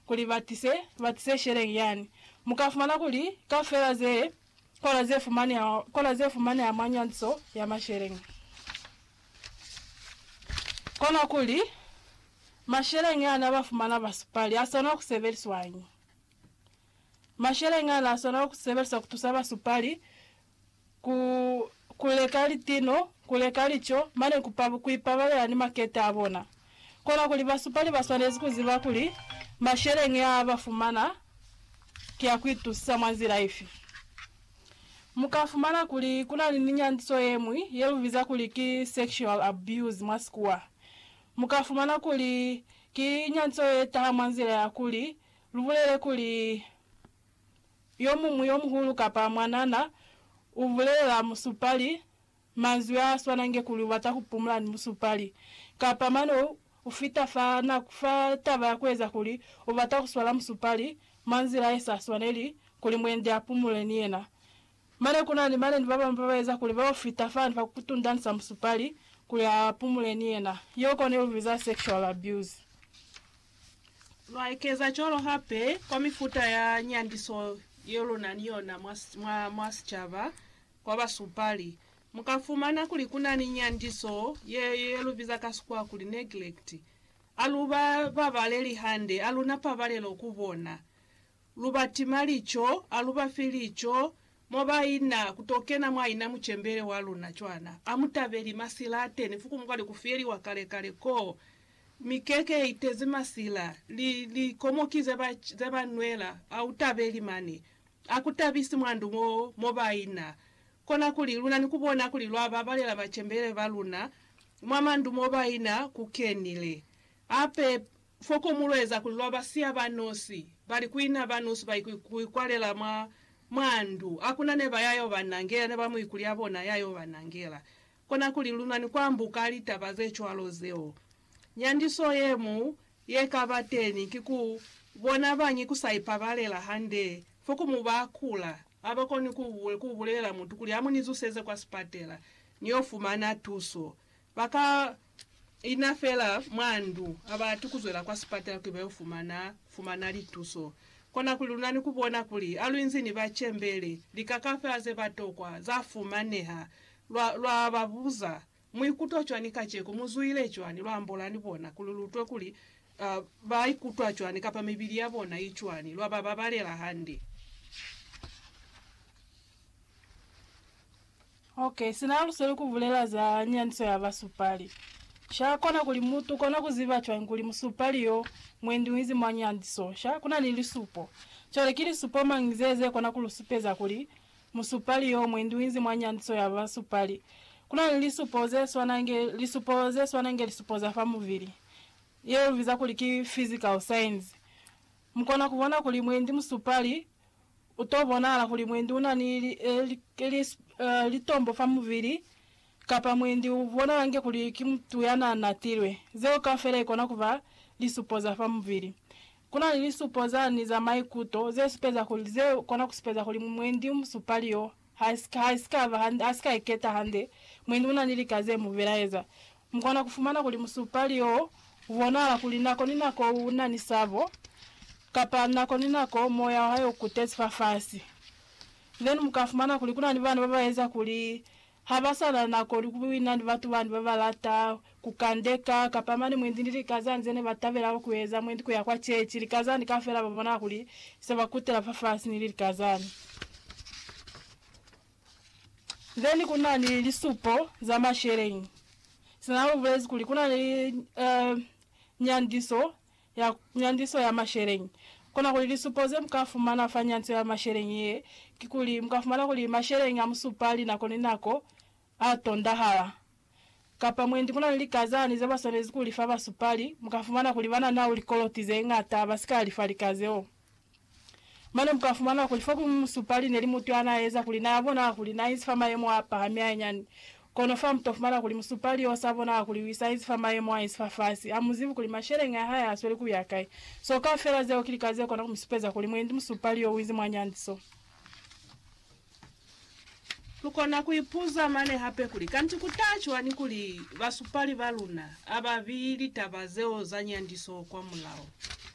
kuli ba tise, ba tise sheleng yani. Mu ka fumana kuli kaufela ze kola ze fumaneha, kola ze fumaneha mwa nyantiso ya masheleng, kona kuli masheleng ana ba fumana ba supali a sona ku sebeliswañi? Masheleng ana a sona ku sebeliswa ku tusa ba supali ku kuleka litino, kuleka lico, mane ku pa, ku ipabalela ni makete a bona. Kona kuli basupali ba swanezi ku ziba kuli masheleñi a ba fumana ki a ku itusisa mwa nzila ifi. Mu ka fumana kuli ku na ni nyandiso ye ñwi ye lu biza kuli ki sexual abuse mwa sikuwa. Mu ka fumana kuli ki nyandiso ye taha mwa nzila ya kuli lu bulele kuli, yomuñwi yomuhulu kapa mwanana u bulelela musupali manzwi a swanange kuli u bata ku pumula ni musupali, kapa mane u fita fa na fa taba ya ku eza kuli u bata ku swala musupali mwa nzila ye sa swaneli kuli muendi a pumule ni yena. Mane kuna ni balendi babamwi babaeza kuli baufita fani fa kutundanisa musupali kuli aapumule ni yena. Yeo kona ilubiza sexual abuse. Lwaekeza cwalo hape kwa mifuta ya nyandiso yeluna ni yona mwa mwa sicaba. Kwa basupali, mukafumana kuli kuna ni nyandiso ye yelubiza ka Sikhuwa kuli neglect. Aluba babaleli hande, aluna pabalelo ku bona. Lu ba tima lico, a lu ba fi lico, mo ba ina, ku to kena mwa ina mucembele wa luna cwana. A mu tabeli masila a teni fuku mukwa li ku fiyeliwa kale kale koo. Mi keke ye itezi masila, li, li komoki ze ba, ze ba nwela, a u tabeli mane. A ku tabisi mwa ndu mo, mo ba ina. Kona kuli, luna ni ku bona kuli lwa babalela bacembele ba luna, mwa mandu mo ba ina, ku kenile. Ape, foko mu lweza kuli lwa ba siya ba nosi, bali ku ina ba nosi ba ikwalela mwa, mwa ndu. A kuna ne ba ya yo ba nangela, ne ba mu ikuli ya bona ya yo ba nangela. Kona kuli lu na ni ku ambuka litaba ze cwalo zeo. Nyandiso ye mu ye ka ba teni ki ku bona bañi ku sa ipabalela hande, foko mu ba kula, ha ba koni ku, ku bulelela mutu kuli a mu ni zuseze kwa sipatela, ni yo fumana tuso. Ba ka ina fela mwa ndu ha ba ati kuzwela kwa sipatala kuli ba yo fumana fumana lituso. Kona kuli luna ni ku bona kuli ha lu inzi ni ba cembele, lika kafela ze ba tokwa za fumaneha, lwa, lwa ba buza, Mu ikutwa cwani kaceko? Mu zwile cwani? Lwa ambola ni bona kuli lu utwe kuli, uh, ba ikutwa cwani kapa mibili ya bona i cwani, lwa ba babalela hande. Ok, sina lusweli kubulela za nyaniso ya basupali. Sha kona kuli mutu ukona kuziba cwañi kuli musupali yo mwendi uinzi mwa nyaniso? Sha kuna ni lisupo. Cwale ki lisupo mañi ze ze kona kulusupeza kuli musupali yo mwendi uinzi mwa nyaniso ya basupali? Kuna ni lisupo ze swana nge lisupo ze swana nge lisupo za fa mubili, ye lu biza kuli ki physical signs. Mukona kubona kuli mwendi musupali U to bonahala kuli mwendi u na ni litombo fa mubili, kapa mwendi u bonahala inge kuli ki mutu ya n'a natilwe. Zeo kaufela i kona ku ba lisupo za fa mubili. Ku na ni lisupo zani za maikuto ze supeza kuli ze kona ku supeza kuli mwendi u mu supa liyo. Ha si ka iketa hande, mwendi una ni lika ze mu belaeza. Mu kona ku fumana kuli musupali wo u bonahala kuli nako ni nako una ni sabo, kapa nako ni nako moya wa hae u kutezi fafasi. Then mu ka fumana kuli kuna ni bana ba ba eza kuli ha ba sa na nako ni ku buina ni batu bani ba ba lata ku kandeka, kapa mane mwendi ni lika za nze ne ba tabela ku eza, mwendi ku ya kwa chechi, lika zani kafela ba bona kuli se ba kutela fafasi ni lika zani. Then ku na ni lisupo za masheleñi. Sina lu bulezi kuli ku na ni eh, nyandiso ya, nyandiso ya masheleñi. Kona kuli lisupo ze muka fumana fa nyandiso ya masheleñi ye, ki kuli muka fumana kuli masheleñi a mu supa linako ni nako, a tondahala, kapa mwendi ku na ni likazani ze ba swanezi ku li fa basupali, mu ka fumana kuli ba na nao likoloti ze ñata ba si ka li fa lika zeo. Mane mu ka fumana kuli fokuñwi musupali ne li mutu ya n'a eza kuli na ya bonaha kuli n'a inzi fa mayemo a pahami hañani. Kono fa mu to fumana kuli musupali y'o s'a bonaha kuli u sa inzi fa mayemo a inzi fafasi, ha mu zibi kuli masheleñi a hae a sweli ku ya kai. Seo kaufela zeo ki lika ze kona ku mi supeza kuli mwendi musupali y'o u inzi mwa nyandiso. Lukona kuipuza mane hape kuli, Kanti kuta cwañi kuli basupali baluna ababili taba zeo zanyandiso kwamulaho?